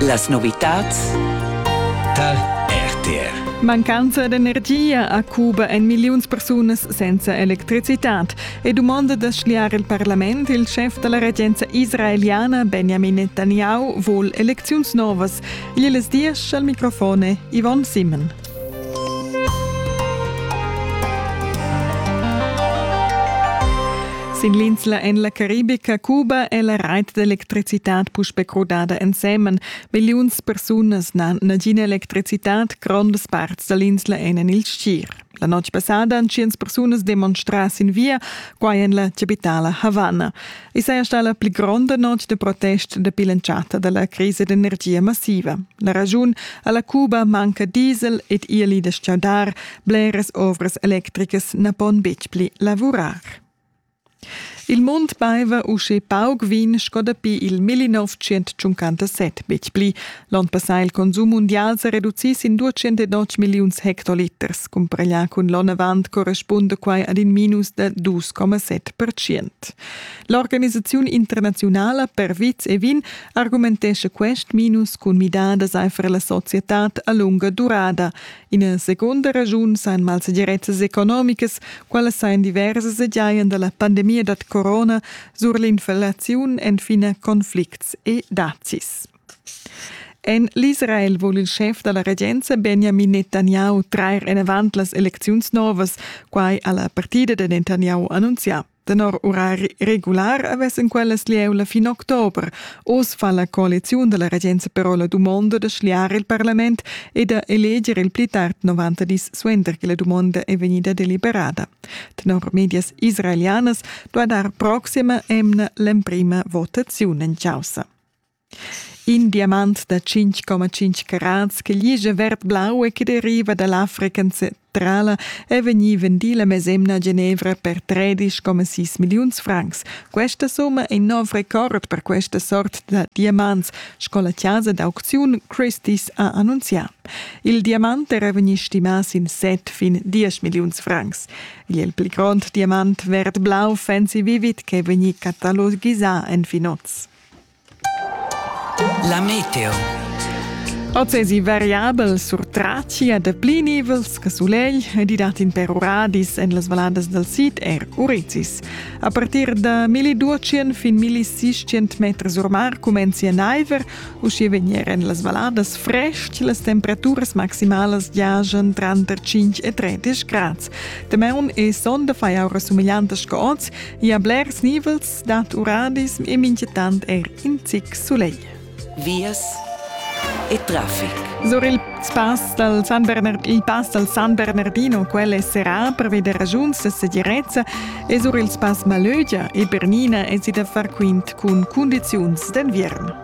Las novitads tar RTR. Mancanza d'energia a Cuba en milliuns persunas senza electricitad. E dumonda da schliar il parlament, il chef da la regenza israeliana Benjamin Netanyahu vul elecziuns novas. Igl es diesch al microfone Yvonne Simon. Sin l'insla en la Caribica Cuba è la rait d'electricitad puspè crudada ensemen. Milliuns persunas n'han nagina electricitad, grondas parts da l'insla èn en il stgir. La notg passada han tschient persunas demonstrà sin via, quai en la chapitala Havana. I saja stà la pli gronda notg da protest dapi l'entschatta da la crisa d'energia massiva. La raschun a la Cuba manca diesel ed ieli da stgaudar. Bleras ovras electricas na pon betg pli lavurar. Il mund baiva usche pauc vin sco dapi il 1957 betg pli, L'onn passà il consum mundial sa reducì sin 209 milliuns hectoliters. Cumpareglià cun l'onn avant correspunda quai ad in minus da 2,7 percent. L'organisaziun internaziunala per vits e vin argumentescha quest minus cun midadas aifer la societad a lunga durada. Ina segunda ragiun sain malsegirezzas economicas, quella sain diversas e giajan da la pandemia da corona sur l'inflaziun enfin conflicts e dazis. En l'Israel vul il schef da la regenza Benjamin Netanyahu trair enavant las elecziuns novas, quai ha la partida da Netanyahu annunzià. Tenor urari regular avessan quellas lieu la fin october. Oz fa la coaliziun da la regenza però la dumonda da schliar il parlament e da eleger il pli tard 90 dis suenter che la dumonda è vegnida deliberada. Tenor medias israelianas duai dar proxima emna l'emprima votaziun en causa. In diamant da 5,5 carats che ligia verd-blau e che deriva da l'Africa centrala è vegnì vendì la mesemna a Genevra per 13,6 milliuns francs. Questa summa è in nov record per questa sort da diamants, sco la chasa d'autziun Christie's ha annunzià. Il diamant era vegnì stimà sin set fin 10 milliuns francs. Il pli grond diamant verd-blau Fancy Vivid che è vegnì catalogisà en fin oz. La meteo. Oz esi variabel sur Tracia de pli nivels che sulegl e di dat in per uradis en las valadas dal sid er Urizis. A partir da 1200 fin 1600 metri sur mar comencia naiver, usci vegner en las valadas frest las temperaturas maximalas giajan tranter 5 e 30 grads. Temeun e sonda fai aura sumigliantas che oz e a blers nivels dad uradis e minchetant er in zic sulegl. Vias e traffic. Sur il pass dal San Bernard, il pass dal San Bernardino, quel è serrà per veder ragiuns da segirezza, e sur il pass Malögia e Bernina è si da far quint cun cundiziuns d'enviern.